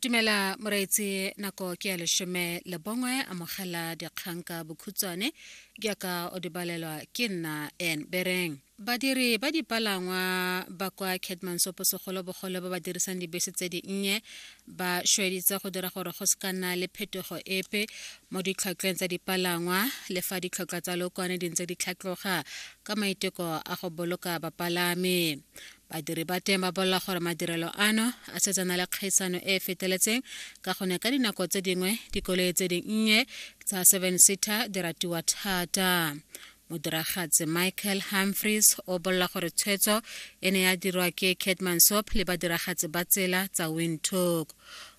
dumela moreetsi nako ke ya leshome le bongwe amogela dikgang ka bokhutshwane jaaka o di balelwa ke nna en bereng badiri ba dipalangwa ba kwa catmansopo segolobogolo ba ba dirisang dibese tse dinnye ba šweditse go dira gore go se ka nna le phetogo epe mo ditlhotlhweng tsa dipalangwa le fa ditlhotlhwa tsa lokwane di ntse di tlhatloga ka maiteko a go boloka bapalami Badiri ba teng ba bolela gore madirelo ano a setse a na le kgaisano e e feteletseng ka gone ka dinako tse dingwe dikoloi tse dinnye tsa seven seater di ratiwa thata. Modiragatsi Michael Humphries o bolela gore tshwetso e ne ya dirwa ke Kate Mansop le badiragatsi ba tsela tsa Windhoek.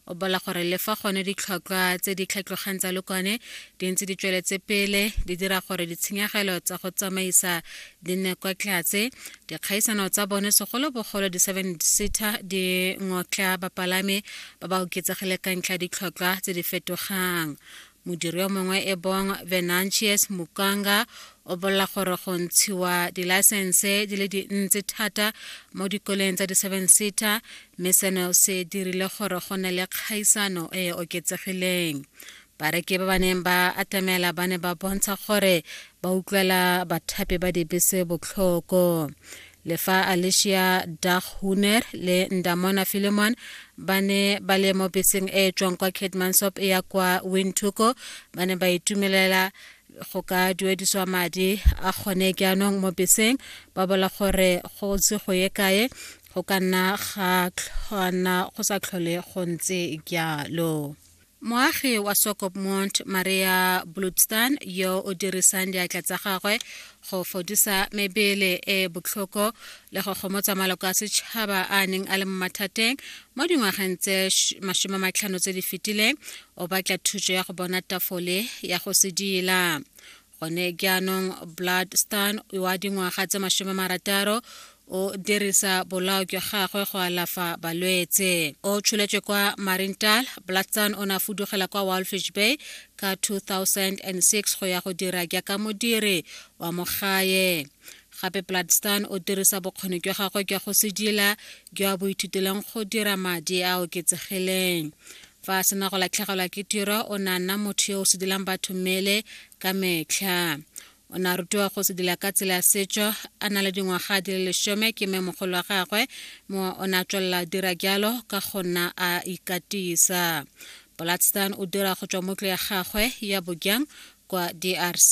o bola gore le fa gone ditlhotlhwa tse di tlhatlogang tsa lokwane di ntse di tsweletse pele di dira gore ditshenyegelo tsa go tsamaisa di nne kwa tlase dikgaisano tsa bone segolobogolo di-seven seater di ngotla bapalami ba ba oketsegile ka ntlha ditlhotlhwa tse di fetogang modiri yo mongwe e bong venantius mukanga o bolela gore go ntshiwa dilaesense di le dintsi thata mo dikoleng tsa di-seven seater mme seno se dirile gore go ne le kgaisano e e oketsegileng bareki ba ba neng ba atamela ba ne ba bontsha gore ba utlwela bathapi ba dibese botlhoko le fa alicia daghuner le ndamona philemon ba ne ba le mo beseng e e tswang kwa ketmansop e ya kwa wintuko ba ne ba itumelela go ka duediswa madi a kgone jaanong mo beseng ba bola gore go se go ye kae go ka nna ga tlhwana go sa tlhole go ntse jalo Moagi wa Swakopmund Maria Bludstan yo o dirisang diatla tsa gagwe go fodisa mebele e e botlhoko le go gomotsa maloko a setšhaba a neng a le mo mathateng mo dingwageng tse masome matlhano tse di fetileng o batla thuso ya go bona tafole ya go sedila gone jaanong blood stan wa dingwaga tse masome marataro o dirisa bolao jwa gagwe go alafa balwetse o tsholetswe kwa marintal blatson o ne a fudugela kwa walfish bay ka 2006 go ya go dira jaaka modiri wa mogae gape bloodstan o dirisa bokgoni jwa gagwe jwa go sedila jwa bo ithuteleng go dira madi a oketsegileng fa a sena go latlhegelwa ke tiro o ne a nna motho yo o sedilang batho mmele ka metlha o ne a rutiwa go sedila ka tsela ya setso a na le dingwaga di le lesome ke mme mogolo wa gagwe mo o ne a tswelela dira jalo ka go nna a ikatisa bolatstan o dira go tswa mo tlo ya gagwe ya bojang kwa drc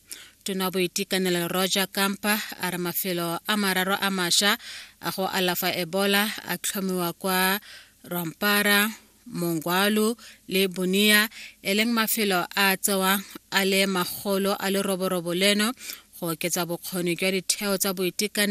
tona boitekanelo roger kampa a re mafelo a mararo a masha a go alafa ebola a tlhomiwa kwa rompara mongwalu le bonia e leng mafelo a tsewang a le magolo a leroborobo leno go oketsa bokgoni jwa ditheo tsa boitekanelo